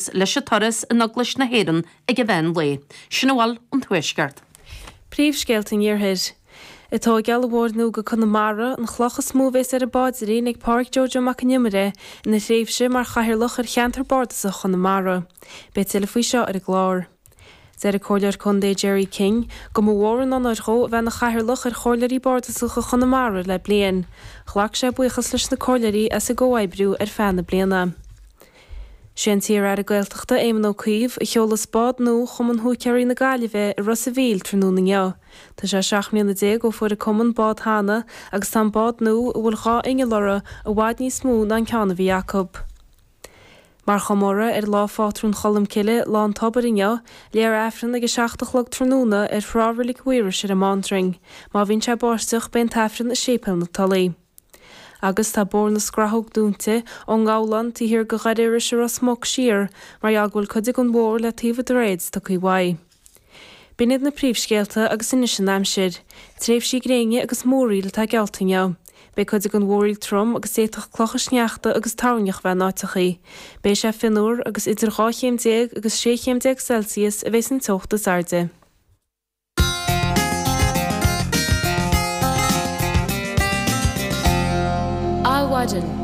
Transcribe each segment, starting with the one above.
agus leis an tórramh in Eaglais na hÉireann ag an meán lae. Sin a bhfuil ón Tuaisceart. Príomhscéalta an Iarthair. Tá tógáil an bhóthair nua go Conamara, an chloch is mó a bhéas ar an bpáidrín ag Pádhraic Jojo Mac an Iomaire ina thréimhse mar chathaoirleach ar cheantar bardasach Chonamara. Beidh tuilleadh faoi seo ar an gclár. Deir an Comhairleoir Contae Gerry King go mba mhór an onóir dhó a bheith ina Chathaoirleach ar Chomhairleoirí Bardasacha Chonamara le bliain. Ghlac sé buíochas leis na Comhairleoirí as a gcomhoibriú ar feadh na bliana. Sé an t-iar-Aire Gaeltachta Éamon Ó Cuív a sheolfas bád nua Chumann Húicéaraí na Gaillimhe i Ros an Mhíl tráthnóna inniu. Tá sé seacht mbliana déag ó fuair an Cumann bád cheana agus tá an bád nua, a bhfuil dhá inneall uirthi, i bhfad níos mó ná an ceann a bhí acu. Mar chomóradh ar lá Phátrún Cholmcille, Lá an Tobair inniu, léifear Aifreann ag a seacht a chlog tráthnóna ar thrá Reilig Mhaoirais ar an mBaintreainn. Má bhíonn sé ag báisteach, beidh an tAifreann i Séipéal na Tulaí. Agus tá Bóthar na Scrathóg dúinte, ón nGabhlán taobh thiar de Dhoire Iorrais i Ros Muc siar, mar gheall go bhfuil cuid den bhóthar le taobh an droichid tugtha uaidh. B'in iad na príomhscéalta agus anois an aimsir. Tréimhsí gréine agus múraíl atá geallta inniu. Beidh cuid den mhúraíl trom agus d'fhéadfadh clocha sneachta agus toirneach a bheith in áiteachaí. Beidh sé fionnuar agus idir dhá chéim déag agus sé chéim déag Celsius a bheas an teocht is airde. Adhmhaidin.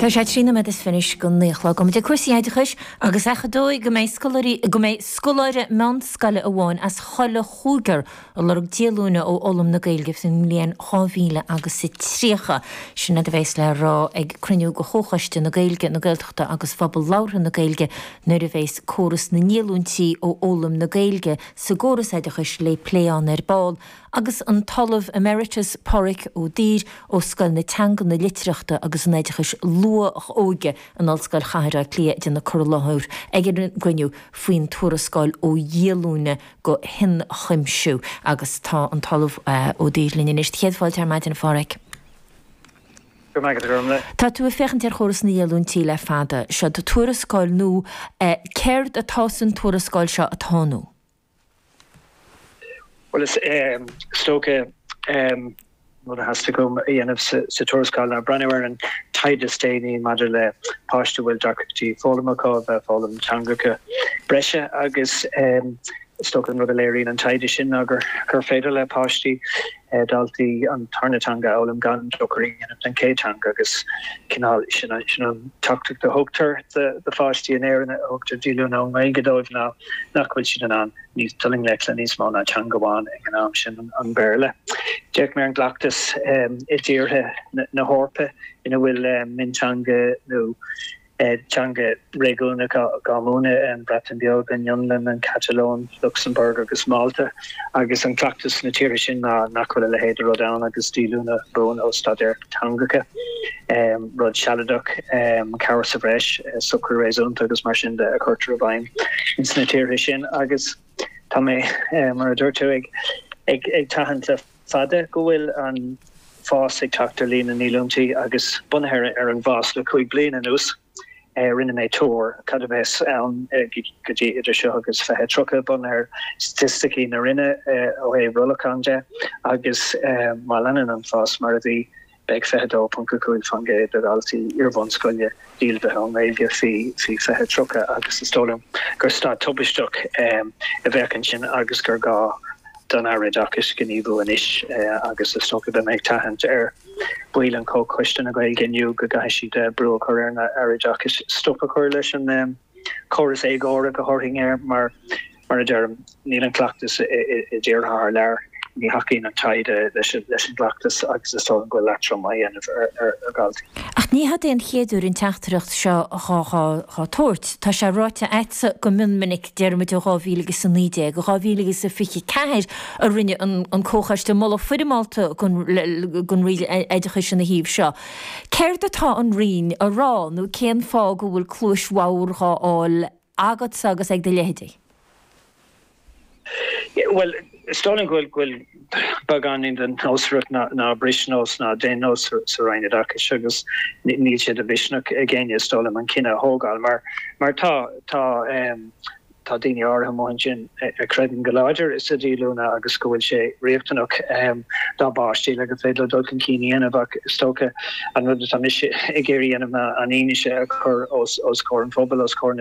Tá sé trí nóiméad is fiche go naoi a chlog. Go mbeidh cúrsaí oideachais Agus gach dóigh go mbeidh scoláirí, go mbeidh scoláire meánscoile amháin as chuile chúigear ag lorg díolúine ó fhoghlaim na Gaeilge faoin mbliain 2030, sin rud a bheas le rá ag cruinniú de Chomhchoiste na Gaeilge, na Gaeltachta agus Phobal Labhartha na Gaeilge nuair a bheas córas na ndíolúintí ó fhoghlaim na Gaeilge sa gcóras oideachais le plé ann ar ball agus an tOllamh Emeritus Pádraig Ó Duibhir ó Scoil na Teanga, na Litearthachta agus an Oideachais Luath-Óige, in Ollscoil Chathair Átha Cliath ag déanamh cur i láthair ag an gcruinniú faoin tuarascáil Ó Dhíolúine go hIonchuimsiú agus tá an tOllamh Ó Duibhir linn anois. Do chéad fáilte ar maidin, a Pháraic. Go maith agat, a Ghormfhlaith. Tá tú ag féachaint ar chóras na ndíolúintí le fada. Seo do tuarascáil nua. Céard atá sa tuarascáil seo atá nua? Bhuel, is dócha, an rud a theastaigh uaim a dhéanamh sa tuarascáil ná breathnú ar an taighde is déanaí maidir le páistí a bhfuil deacrachtaí foghlama acu a bheith ag foghlaim teangacha breise agus is dócha an rud a léiríonn an taighde sin ná gur féidir le páistí daltaí an tarna teanga a fhoghlaim gan dochar a dhéanamh don chéad teanga agus cineál sin an teachtaireacht a thugtar do pháistí in Éirinn a thugtar díolúine ón nGaeilge dóibh ná nach bhfuil siad in ann dul i ngleic le níos mó ná teanga amháin ag an am sin an Béarla. D'fhéach mé ar an gcleachtas i dtíortha na hEorpa ina bhfuil mionteanga nó Beidh teanga réigiúnach á múineadh, an Bhreatain Bheag, an Fhionlainn, an Chatalóin, Lucsamburg agus Málta, agus an cleachtas sna tíortha sin ná nach bhfuil a leithéid de rud ann agus díolúine buan ó staidéar teangacha. Rud sealadach, cabhair sa bhreis, socrú réasúnta agus mar sin de a chuirtear i bhfeidhm ins na tíortha sin agus tá mé, mar a dúirt tú, ag tathant le. fada go bhfuil an fás ag teacht ar líon na ndíolúintí agus bunaithe ar an bhfás le cúig bliana anuas, rinne mé tuar cad a bheas ann go dtí idir seo agus 2030, bunaithe ar staitisticí na Roinne ó thaobh rollacháin de, agus má leanann an fás mar a bhí, Beidh 22.5% de dhaltaí iarbhunscoile díolmhaithe ón nGaeilge faoi 2030 agus is dóigh liom gur staid tubaisteach a bheadh ansin agus gur gá don Aire Oideachais gníomhú anois agus is dócha beidh mé ag tathant ar bhaill an Chomhchoiste na Gaeilge inniu go gcaithfidh siad brú a chur ar an Aire Oideachais stop a chur leis an córas éagórach a thabharfainn air mar Mar a deirim, níl an cleachtas i dtíortha thar lear. Ní thacaíonn an taighde leis an gcleachtas agus is dóigh liom go bhfuil leatrom á dhéanamh ar dhaltaí. Ach ní hod é an chéad uair an teachtaireacht seo dhá tabhairt. Tá sé ráite agatsa go mion minic, deir muid ó 2019, i 2024 a rinne an Comhchoiste moladh foirmeálta don Roinn Oideachais ina thaobh seo. Céard atá an Roinn a rá nó cén fáth go bhfuil cluais bhodhar dhá fháil ag agatsa agus ag do leithéidí? Bhuel, is dóigh liom go bhfuil beagáinín den nósmhaireacht ná bris nós ná déan nós sa Roinn Oideachais agus níl sé de mhisneach ag éinne is dóigh liom an cinneadh a thógáil mar mar tá. Tá daoine áirithe amuigh ansin a chreideann go láidir sa díolúine agus go bhfuil sé riachtanach dá bpáistí le gur féidir leo dul chun cinn a dhéanamh ach is dócha an rud atá mise ag iarraidh a dhéanamh ná an fhianaise a chur os comhair an phobail, os comhair na